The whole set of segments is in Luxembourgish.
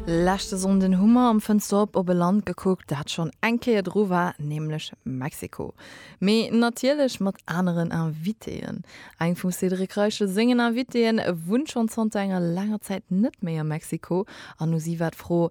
Leschte Sonnden hu mer am Fënster op op e Land gekuckt, dat schonn eng Kéier dru war, nämlech Mexiko. Mee natierlech mat aneren Invitéen. Eng vum Cédric Reichel sengen Invitéen wunnt schonn zanter enger laanger Zäit net méi a Mexiko an u si war d'Fro,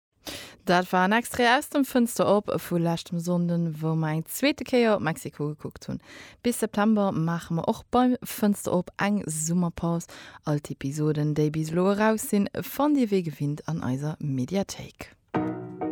Dat war en Extrait aus dem Fënster op vu leschtem Sonnden, wou mer eng zweete Kéier op Mexiko gekuckt hunn. Bis September maache mer och bei Fënster op eng Summerpaus. All d'Episoden, déi bis elo eraus sinn, fannt Dir wéi gewinnt an eiser Mediathéik.